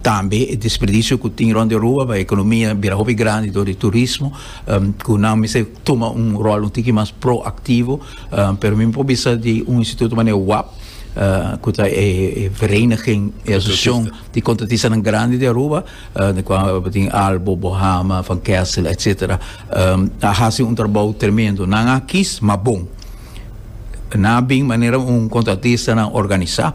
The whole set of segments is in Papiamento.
Tambe e desperdicio cu tin rond di Aruba pa e economia bira hopi grandi dor di turismo cu nan mester tuma un rol un tiki mas proactivo pero mi por bisa di un instituto manera wap cu ta e vereniging e asociacion di contratistanan grandi di Aruba den cua bo tin Albo, Bohama, Van Kessel etc. a haci un trabou tremendo nan a kies ma bon nan a bin manera un contratistanan organisa.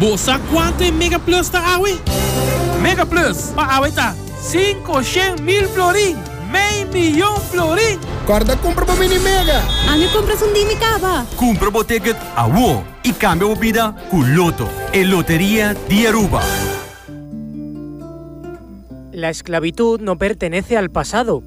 Bo sa kuantu e MegaPlus ta awe? MegaPlus pa awe ta, Sinku shen mil florin, mei miyon florin! Kòrda kumpra bo Mini Mega! Ami a kumpra esun di mi kaba! Kumpra bo ticket awor y cambia bo bida cu Lotto, e loteria di Aruba. La esclavitud no pertenece al pasado.